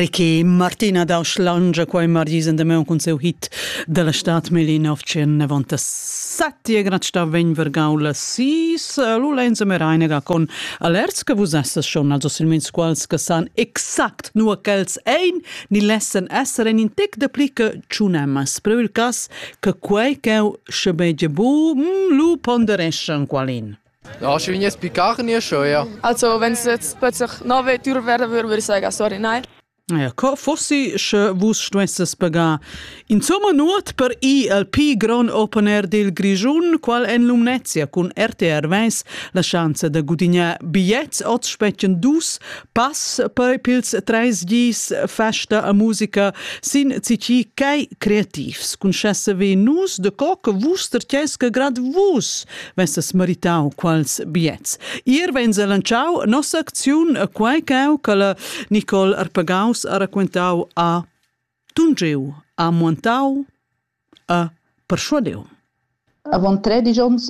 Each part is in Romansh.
Ricky Martina da Schlange qua in margis endemai un cun seu hit da la stat meli 1997 e grat sta vegn vergau la sis lu lenza merainega con alerts che vus esses schon also silmins quals che san exact nu quels ein ni lessen esser en in tec de pli che tsunemas però il cas che quei che sche beige bu mm, lu pondereschan qualin Laschi vegnir spicar nia scheuia. Also wenn es plötzlich nove Tür wäre, würde ich sagen, sorry, nein. Ja, co fossi sche vus stuesses pagar insomma nuot per i al pi grand open air del Grischun, qual en Lumnezia cun RTR Weiss la chance da gudignar bigliets oz spetschen dus pass poi pils treis dis festa a musica sin citi quai creativs concessevi nus de co che vus tercess che grad vus vesses meritau quals biets ir vens lanciau nossa acziun quai cau che la Nicole Arpagaus ha raquentau a Tungiu a Montau A perschuadiun. Avant tredisch onns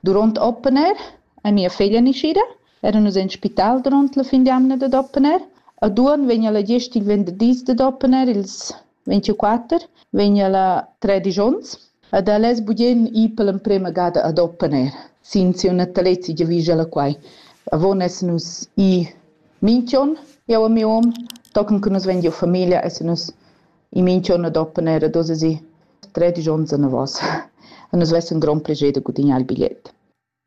durant Oppener è mia figlia naschida. Era nus en spital durant la fin d'jamna dad Oppener. A Duon vegna la gest il venderdis dad Oppener, ils 24, vegna la tredisch onns. Ed el es bugen i per l'emprema gada ad Oppener. Sin siu natalezi giavischa la quai. Avon essan nus i minch'on, io e miu hom, tochen che nus vegn giu famiglia, essan nus In minch'on doppen era da sesir tredisch ons anavos. E nus vessan grond plascher da gudignar il bigliet.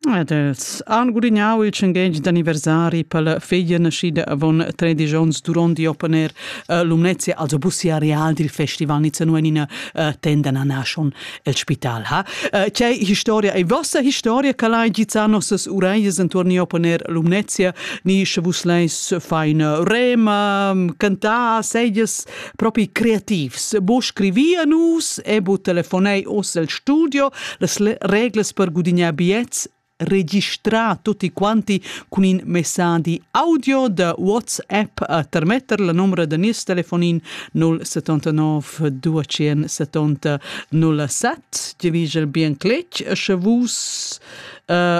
Ed els han gudignau il tschenghegn d'anniversari per la feglia naschida avon 13 onns duront di opponer uh, Lumnezia, also bussi areal dil festival Nizza en ina uh, tenda nanaschon el spital ha. Uh, c'è historia e vostra historia che l'hai gizzà nossas uraias intorno di opponer Lumnezia, ni sche vus leis fa in rema, cantar, seglias propi creativs, bo scrivia nus e bo telefonei os el studio las reglas per gudignar biets registrar tutti quanti con in messaggi audio da WhatsApp a termetter la numero da nies telefonin 079 270 07 Gevigel bien cletg sche vus uh,